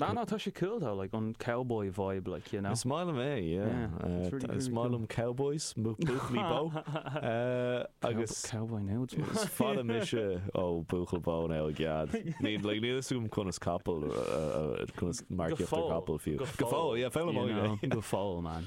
Ná ná tá sé cool though like an cowboy vibe like you know. Is maith liom é yeah is maith liom cowboys buachaillí bó agus cowboy now it's maith is fada mise ó buachaill bó now i gcead ní like níl fhios agam conas capall conas marcaíocht ar capall fiú go fóill yeah foghlaimeoidh mé go fóill man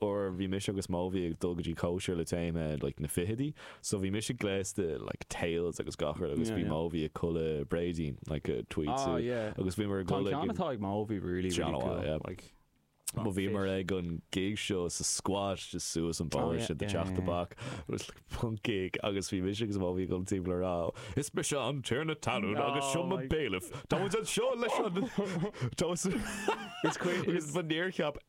uair bhí mise agus Móibhí ag dul go dtí cóisir le téama like na fichidí so bhí mise gléasta like tails agus gach rud agus bhí Móibhí i gculaith bréidín like a tweed suit agus bhíomar ag dul ag an Tá an ceann atá ag Móibhí really really cool like mar bhíomar ag an gig seo sa squat just suas an bóthar sin do teach tobac it was like punk gig agus bhí mise agus Móibhí ag dul timpeall a rá Is mise an Tiarna na Talún agus seo mo bailiff táimid anseo leis an táimid Is ba níor cheap